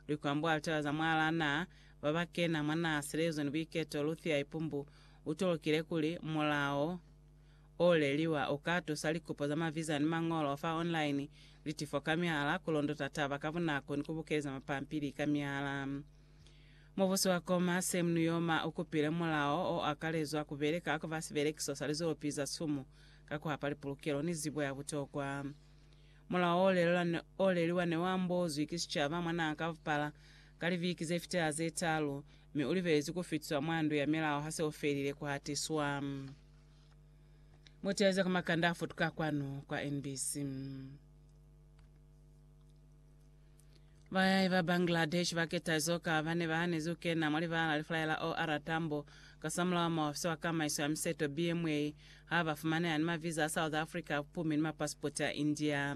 Likwambo a litaba za mwalaa na ba ba kena mwa naa Silezo ni Buiketo Luthia Ipumbu u tolokile kuli, Mulao o leliwa u ka tusa likupo za maviza ni mañolo fa online, litifo ka mihala, ku londota taba ka bunako ni ku bukeleza mapampili ka mihala. Mubusi wa Koma, Sam Nujoma, u kupile mulao o akalezwa ku beleka ka siberekiso sa lizolopi za sumu ka ku hapa lipulukelo ni zibo ya butokwa. Mulao o leliwa ne u ambozwi ki sicaba mwa n'a ka bupala ka libiki ze fitela ze talu, mi u libelezwi ku fitiswa mwa ndu ya milao ha se u felile ku hatiswa. Buteezi ka makanda a futuka kwanu kwa NBC. Bayai ba Bangladesh ba keta izo ka ba ne ba hanezi ku kena mwa libala li fulaya la OR Tambo kasamulaho muofisi wa kamaiso ya miseto, BMA, ha ba fumaneha ni maviza a South Africa a bupumi ni mapasipoti a India.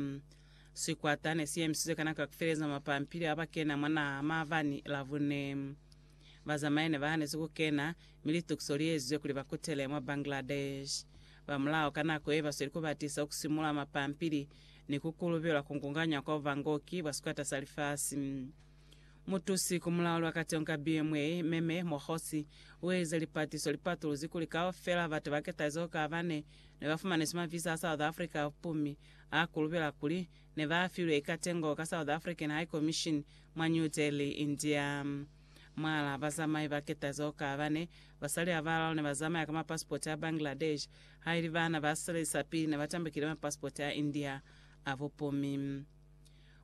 Sikwata ne si emisizwe ka nako ya ku feleza mwa pampili ha ba kena mwa naha maabani Labune. Bazamai ne ba hanezi ku kena, mi litukiso li ezizwe kuli ba kutele mwa Bangladesh. Ba mulao ka nako ye ba sweli ku batisa ku simula mapampili ni ku kulubelwa ku nkunganya kwa bubangoki bwa sikwata sa lifasi. Mutusi ku mulao lwa kateho ka BMA, Meme Mokgotsi, u elize lipatiso li patuluzi kuli kaufela batu ba ketalizo ka bane ne ba fumaniswi mavisa a South Africa bumi a kulubela kuli ne ba filwe ikatengo ka South African High Commission mwa New Delhi, India. Mwal'a bazamai ba ketalizo ka bane, basali a balalo ne ba zamaya ka mapasipoti a Bangladesh Haili baana ba silali sa pili ne ba tambukile mapasipoti a India a bupumi.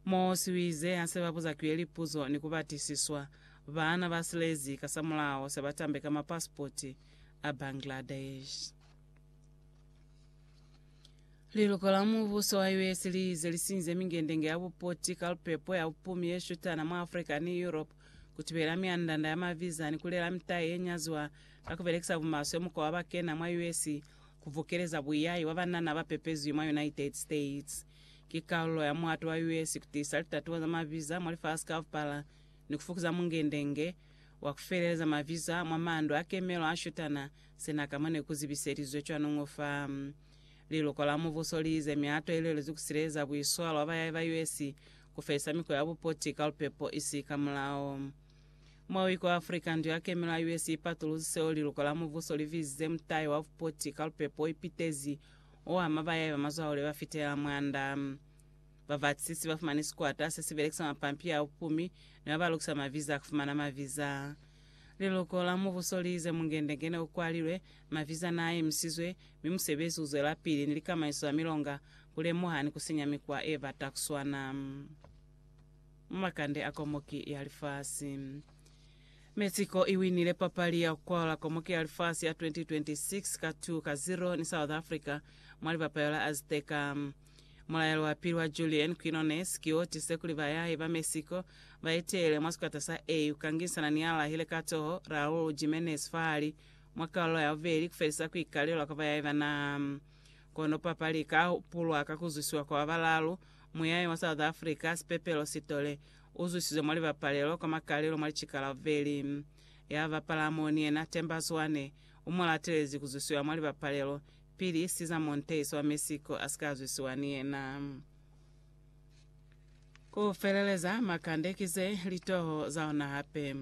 Moosi u ize ha se ba buza Kuye lipuzo ni ku batisiswa, baana ba silezi kasamulaho se ba tambe ka mapasipoti a Bangladesh. Liluko la Mubuso wa US li ize li sinyize mingendenge ya bupoti ka lupepo ya bupumi ye shutana mwa Africa ni Europe ku tibela myanda-nda ya maviza ni ku lela mitayi ye nyaziwa Ka ku belekisa bumaswe mukwa wa ba kena mwa US ku bukeleza buyahi bwa banana ba pepezwi mwa United States, ki kalulo ya muato wa US ku tiisa litatuwa za mabiza mwa lifasi kaupala ni ku fukuza mungendenge wa ku feleleza mabiza mwa mandu a kemelo a shutana sina ka mo ne ku zibiselizwe cwanuñu fa. Liluko la Mubuso li ize miato i lwelezi ku sileleza buiswalo bwa bayahi ba US ku felisa mikwa ya bupoti ka lupepo isi ka mulao. Mwa Iko Africa, ndu ya kemelo ya US ipatuluzi seo liluko la mubuso li bizize mutai wa bupoti ka lupepo o ipitezi, o ama ba yaiba mazwahule ba fitelela mwanda. Babatisisi ba fumani sikwata se si belekisa mapampili a bupumi ni ba ba lukisa maviza a ku fumana maviza. Liluko la mubuso li ize mungendengene u kwalilwe, maviza n'a emisizwe, mi musebezi u zwelapili ni likamaniso za milonga ku lemuha ni ku sinya mikwa e bata ku swana. mu makande a komoki ya lifasi. Mexico i winile papali ya ku kwalula komoki ya lifasi ya 2026 ka 2 ka 0 ni South Africa mwa libapayo la Azteca. Mulaelo wa pili wa Julian Quinones ki o tisize kuli bayahi ba Mexico ba eteele mwa sikwata sa A ku ka ngisana ni ya lahile ka toho Raul Jimenez fahali mwa kalulo ya bubeli ku felisa ku ikalelwa kwa bayahi ba naha. Kono papali ika hupulwa ka ku zwisiwa kwa ba balaalu. Muyayi mwa South Africa, Sipepelo Sithole, u zwisizwe mwa libapalelo kwa makalelo mwa licikala vveli. Ya bapala mo ni yena, Themba Zwane, u mo latelezi ku zwisiwa mwa libapalelo, pili Cesar Montes wa Mexico a si ka zwisiwa ni yena. Ku feleleza, Makande ki ze litoho za ona hape.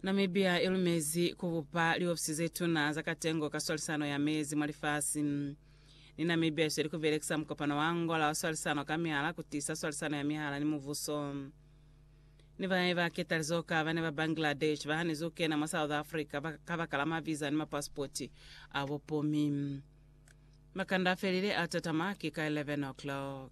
Namibia i lumezi ku bupa liofisi ze tuna za katengo ka swalisano ya mezi mwa lifasi. Ni Namibia i sweli ku belekisa mukopano wa Angola wa swalisano ka mihala ku tiisa swalisano ya mihala ni mubuso. Ni bae ba ketalizo ka bane ba Bangladesh ba hanize ku kena mwa South Africa ba- ka baka la maviza ni mapasipoti a bupumi. Makanda a felile a tatama ki ka 11 o'clock.